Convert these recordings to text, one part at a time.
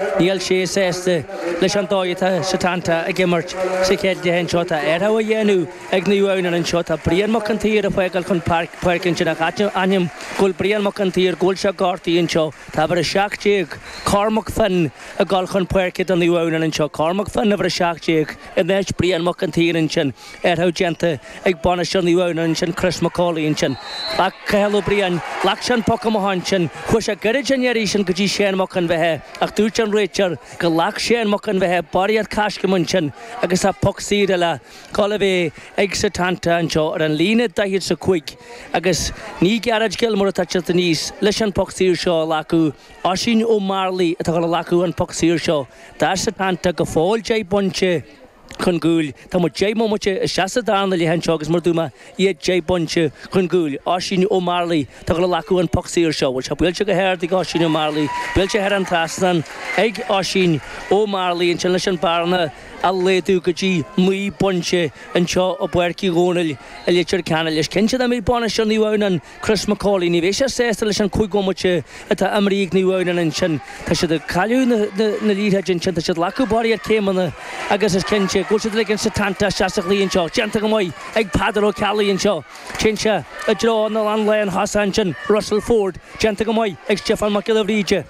Níl sé sásta leis an dóigh atá Setanta ag imirt sa chéad leath anseo. Tá athrú á dhéanamh ag Naomh Adhamhnáin anseo. Tá Brian Mac an tSaoir ag fágáil chun páirc, páirce ansin a d'ainm go bhfuil Brian Mac an tSaoir, go bhfuil sé gortaithe anseo. Tá uimhir 17, Cormac Finn, ag dul chun páirce do Naomh Adhamhnáin anseo. Cormac Finn, uimhir 17, in áit Brian Mac an tSaoir ansin. athrú déanta ag bainisteoir Naomh Adhamhnáin ansin, Chris Mac Amhlaoidh ansin. Ghlac Cathal Ó Briain, ghlac sé an poc amach ansin, chuaigh sé gairid an iarraidh sin go dtí Séan Mac an Bheithe ach dúirt an réiteoir go ghlac Séan Mac an Bheithe barraíocht coiscéim ansin agus tá poc saor eile ag dul a bheith ag Setanta anseo ar an líne 45 agus ní Gerard Gilmore atá ag teacht aníos leis an poc saor seo a ghlacadh, Oisín Ó Mearlaigh atá ag dul a ghlacadh an poc saor seo. Tá Setanta go fóill deich bpointe. chun gcúil. Tá muid deich mbomaite isteach sa darna leath anseo agus mar a dúirt mé iad deich bpointe chun gcúil. Oisín Ó Mearlaí, atá ag dul a ghlacadh an poc saor seo. Bhuel, tá sé buailte go hard ag Oisín Ó Mearlaí. Buailte thar an trasnán ag Oisín Ó Mearlaí. Ansin leis an bearna a laghdú go dtí naoi bpointe anseo i bPáirc Uí Dhónaill i Leitir Ceanainn. Is cinnte nach mbeidh bainisteoir Naomh Adhamhnáin, Chris Macaulay. Ní bheidh sé sásta leis an cúig bomaite atá imeartha ag Naomh Adhamhnáin ansin. Tá siad ag cailleadh na, na, na liathróide ansin, tá siad ag glacadh barraíocht céimeanna agus is cinnte go bhfuil siad ag ligean Setanta isteach sa chluiche anseo, déanta go maith ag Peadar Ó Ceallaigh anseo, téann sé i dtreo an, an lántosaí ansin, Russell Ford, déanta go maith ag Stiofán Mac Giolla Bhríde.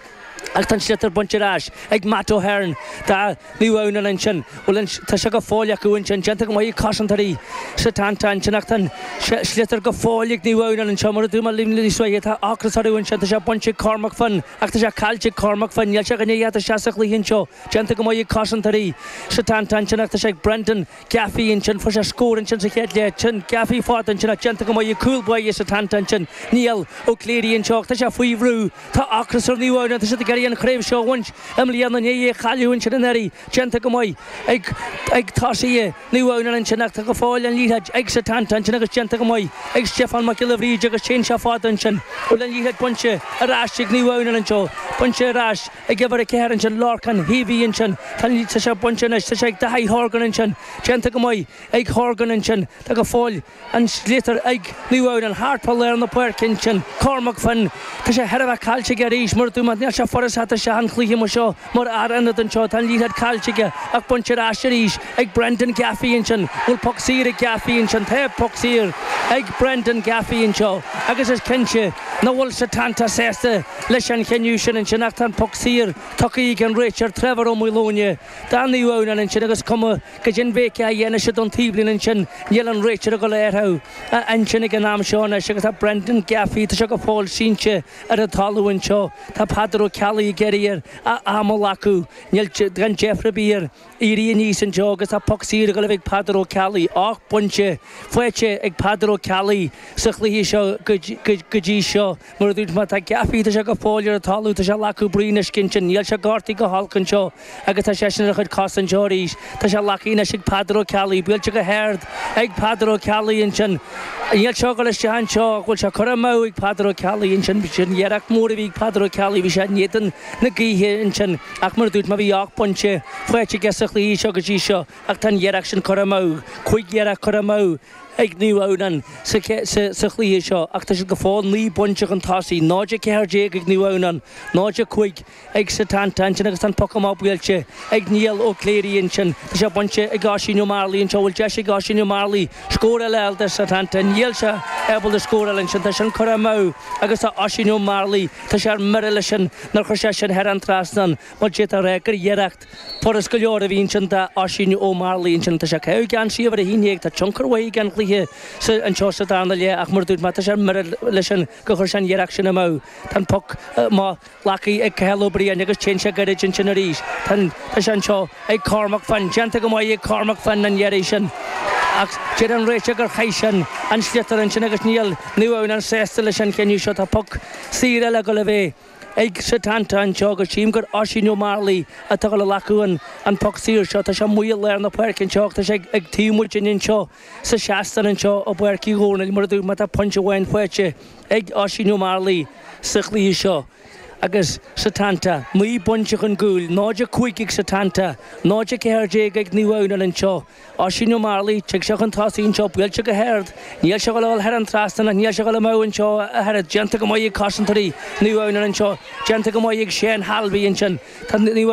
Ach tá an sliotar bainte ar ais ag Matt Ahern do Naomh Adhamhnáin ansin. Bhuel an, tá sé go fóill acu ansin. Déanta go maith ag cosantóirí Setanta ansin ach tá an sliotar go fóill ag Naomh Adhamhnáin anseo. Mar a dúirt mé níos luaithe, tá ocras orthu ansin. Tá sé bainte ag Cormac Finn ach tá sé caillte ag Cormac Finn. Níl sé ach i ndiaidh teacht isteach sa chluiche anseo. Déanta go maith ag cosantóirí Setanta ansin ach tá sé ag Brendan. Gaffey ansin, fuair sé scór ansin sa chéad leath, téann Gaffey fada ansin ach déanta go maith ag cúl báire Setanta ansin, Niall Ó Cléirigh anseo ach tá sé faoi bhrú, tá ocras ar Naomh Adhamhnáin, tá siad ag iarraidh an chraobh seo a bhaint i mbliana i ndiaidh é a chailleadh ansin anuraidh, déanta go maith ag, ag tosaithe Naomh Adhamhnáin ansin ach tá go fóill an liathróid ag Setanta ansin agus déanta go maith ag Stiofán Mac Giolla Bhríde agus téann sé fada ansin, bhfuil an liathróid bainte ar ais ag Naomh Adhamhnáin anseo, bainte ar ais. ag uimhir a ceathair ansin, Lorcán Heavey ansin, tá an sliotar seo bainte anois, tá sé ag Daithí Horgan ansin, déanta go maith ag Horgan ansin, tá go fóill an sliotar ag Naomh Adhamhnáin, thart fá lár na páirce ansin, Cormac Finn, tá sé chóir a bheith caillte aige arís, mar a dúirt mé, níl sé furast isteach an cluiche mar seo, mar fhear ionaid anseo, tá an liathróid caillte aige ach bainte ar ais arís ag Brendan Gaffey ansin, an bhfuil poc saor ag Gaffey ansin, tá poc saor ag Brendan Gaffey anseo agus is cinnte nach bhfuil Setanta sásta. leis an chinneadh sin ansin, ach tá an poc saor tugtha ag an Réiteoir Trevor Ó Maoileoine do Naomh Adhamhnán ansin agus cuma go hinbhéice á dhéanamh sin don taobhlíne ansin. Níl an Réiteoir ag dul a athrú a intinn ag an am seo anois agus tá Brendan Gaffey, tá sé go fóill sínte ar an talamh anseo, tá Peadar Ó Ceallaigh ag iarraidh air a am a ghlacadh, níl gan deifir ar bith air. Éirí aníos anseo agus tá poc saor ag dul a bheith ag Peadar Ó Ceallaigh, ocht bpointe faighte ag Peadar Ó Ceallaigh sa chluiche seo go dtí seo. Mar a dúirt mé, tá Gaffey, tá sé go fóill ar an talamh, tá sé ag glacadh braon uisce ansin, níl sé gortaithe go holc anseo agus tá seisean ar a chuid cosa anseo arís. Tá sé á ghlacadh anois ag Peadar Ó Ceallaigh, buailte go hard ag Peadar Ó Ceallaigh ansin, níl sé ag dul isteach anseo, bhfuil sé curtha amú ag Peadar Ó Ceallaigh ansin, sin iarracht mhór a bhí ag Peadar Ó Ceallaigh, bhí sé in éadan. na gaoithe ansin. Ach mar a dúirt mé, bhí ocht bpointe faighte aige sa chluiche seo go dtí seo ach tá an iarracht sin curtha amú, cúig iarracht curtha amú ag Naomh Adhamhnáin sa chluiche seo ach tá siad go fóill naoi bpointe chun tosaigh, 0 14 ag Naomh Adhamhnáin, 0 5 ag Setanta ansin agus tá an poc amach buailte ag Niall Ó Cléirigh ansin. Tá sé bainte ag Oisín Ó Mearlaí anseo, bhfuil deis ag Oisín Ó Mearlaí scór eile a fháil do Setanta? Níl sé ábalta scóráil ansin, tá sin curtha amú agus tá Oisín Ó Mearlaí, Tá sé ar mire leis sin nár chuir sé sin thar an trasnán mar d'fhéadfá a rá gur iarracht furast go leor a bhí ansin do Oisín Ó Mearlaí ansin. Tá sé ag caitheamh geansaí uimhir a haon déag. Tá tionchar aige ar an chluiche anseo sa darna leath ach mar a dúirt mé tá sé ar mire leis sin gur chuir sé an iarracht sin amú. Tá an poc amach glactha ag Cathal Ó Briain agus téann sé gairid ansin arís. Tá an, tá sé anseo. ag Cormac Finn, déanta go maith ag Cormac Finn an iarraidh sin, ach deir an réiteoir gur chaith sin an sliotar ansin agus níl Naomh Adhamhnán sásta leis an chinneadh seo. Tá poc saor eile ag dul a bheith ag Setanta anseo agus chím gur Oisín Ó Mearlaí atá ag dul a ghlacadh an poc saor seo. Tá sé amuigh i lár na páirce anseo ach tá sé ag taobh muidinne anseo sa seastán anseo i bPáirc Uí Dhomhnaill mar a dúirt mé tá pointe amháin faighte ag Oisín Ó Mearlaí sa chluiche seo. agus Setanta, naoi bpointe chun cúil, 0 5 ag Setanta, 0 14 ag Naomh Adhamhnáin anseo, Oisín Ó Mearlaí, tig sé chun tosaigh anseo, buailte go hard, níl sé ag dul a dhul thar an trasnán ach níl sé ag dul amú anseo ach oiread, déanta go maith ag cosantóirí Naomh Adhamhnáin anseo, déanta go maith ag Seán Halvey ansin, tá Naomh